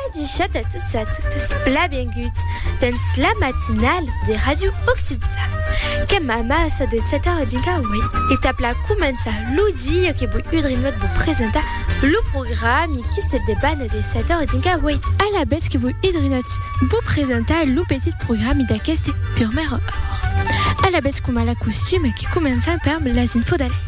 Adichat a tots e a totas, blabenguts dens la matinala de Radio Occità. Qu'èm amassa de 7 a 10 a 8 e tap la començar lo dia que voi udrinhot vos presentar lo programi qui se debana de 7 a 10 a 8. Alavetz que voi udrinhot vos presentar lo petit programi d'aqueste purmèra ora. Alavetz coma la costuma que començam perm las infos d'Alex.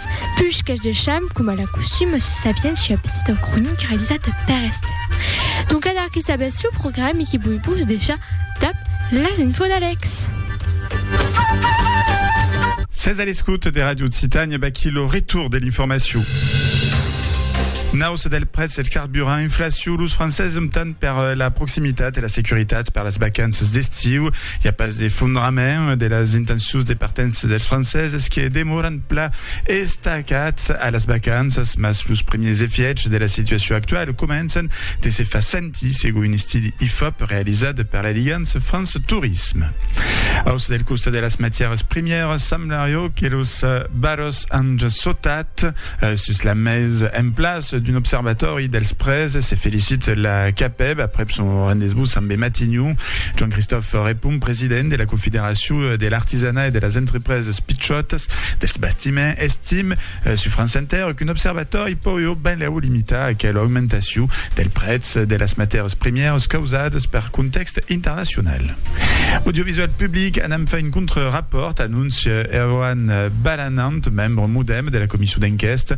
Puish qu'es de cham, coma la costum, se sabián si a petit en cronic realizat per Esther. Donc adar que sabés lo programe que voi vos decha dab las info d'Alex. Sètz a l'escout de Radio Occitània, vaquí lo retour de l'informacion. Nausa del prètz del carburant, inflacion, los franceses optan per la proximitat e la securitat per las vacanças d'estiu. I a pas d'efondrament de las intencions de partença dels franceses que demoran pla estacats a las vacanças, mas los primièrs efièchs de la situacion actuala començan de se far sentir, segon un estudi Ifop realizat per l'Aligance France Tourisme. Aus del costat de las matièras primièras, semblario que los valors an sautat sus la mes. En plas d'un observatòri dels prèses, se felicit la CAPEB aprèp son rendez-vous ambe Matignon. Joan-Christophe Repon, president de la Confederacion de l'artisanat e de las entrepreses, Las pichotas dels bastiments, estim sus France Inter qu'un observatòri pòió benlèu limitar aquela augmentacion del prètz de las matèras primièras causadas per contèxt internacional. Audiovisual Public anam far un contre-rapòrt, anóncia Erwan Balanant, membre modèm de la comisson d'enquèsta.